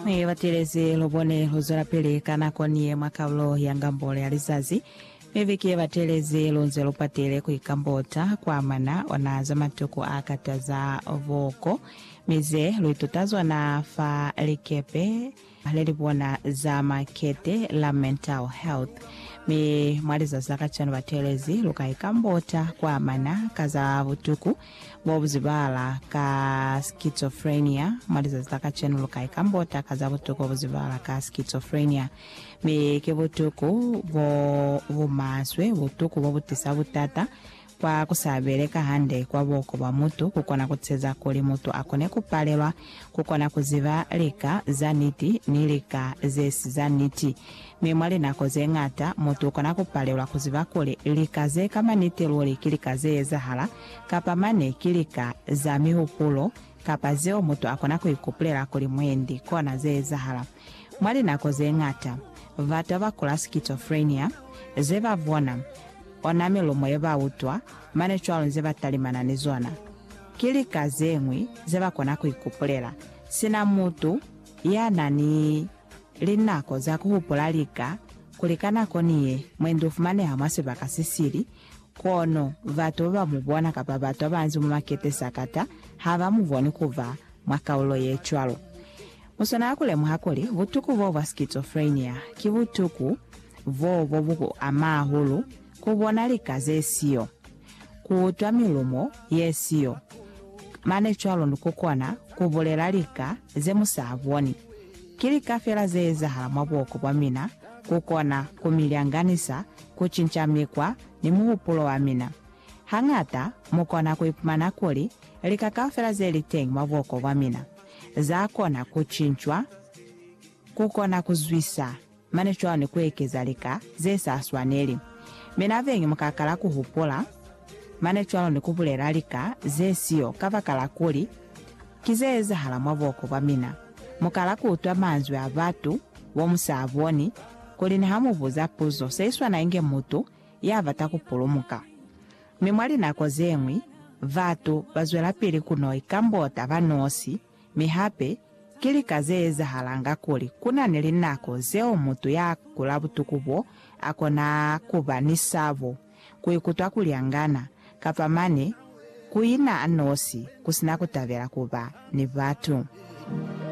He batelezi, lubone luzwelapili ka nako niye mwa kalulo ya ngambolo ya lizazi. Mi viki yebatelezi, lunze lupatile kuikambota kwa mwana ona za matuku a kataza boko, mi ze luituta zona fa likepe lelibona za makete la Mental Health. Mi mwa lizazi la kacwalo batelezi luka ikambota kwa mana ka za butuku Bo bu zibahala ka schizophrenia mwa lizazi la kacenu lu kai kambo taka za butuku bu zibahala ka schizophrenia? Mi ki butuku bo bu maswe, butuku bo bu tisa butata kwa ku sa beleka hande kwa buko bwa mutu, ku kona ku teza kuli mutu a kone ku palelwa ku kona ku ziba lika za niti ni lika ze si za niti. Mi mwa linako ze ñata, mutu u kona ku palelwa ku ziba kuli lika ze ka maniti luli ki lika ze ezahala, kapa mane ki lika za mihupulo, kapa zeo mutu a kona ku ikupulela kuli mwendi kona ze ezahala. Mwa linako ze ñata, batu ba kula schizophrenia, ze ba bona, ona milumo ye ba utwa, mane cwalo nze ba talimana ni zona, ki lika ze ñwi ze ba kona ku ikupulela, sina mutu ya na ni Linako za ku hupula lika kuli ka nako ni ye, mwendi u fumaneha mwa sibaka se sili, kono batu ba ba mu bona kapa batu ba banzi mwa makete sakata ha ba mu boni ku ba mwa kaulo ye cwalo. Mu swanela ku lemuha kuli butuku b'o bwa schizophrenia ki butuku b'o bo bu ku ama hahulu ku bona lika ze siyo. ku utwa milumo ye siyo, mane cwalo ni ku kona ku bulela lika ze mu sa boni. Ki lika fela ze ezahala mwa buhoko bwa mina ku kona ku mi lyanganisa ku cinca mikwa ni muhupulo wa mina. Hañata mu kona ku ipumana kuli lika kaufela ze li teñi mwa buhoko bwa mina za kona ku cincwa ku kona ku zwisa mane cwani kuekeza lika zesa swaneli, mi naveñi mukakala kuhupula mane cwalo ni kubulela lika zesiyo kabakala kuli ki zeezahala mwa buoko bwa mina. Mukala kuutwa manzwi a batu bomusaaboni kuli ni hamubuza puzo seiswana inge mutu yabata kupulumuka. Mi mwa linako zeñwi, batu bazwelapili kunoi kambota banosi. Mi hape, ki lika ze ezahalanga kuli ku na ni linako zeo mutu ya kula butuku bo a kona ku ba ni sabo, ku ikutwa kuli a ngana, kapa mane ku ina a nosi ku si na ku tabela ku ba ni batu.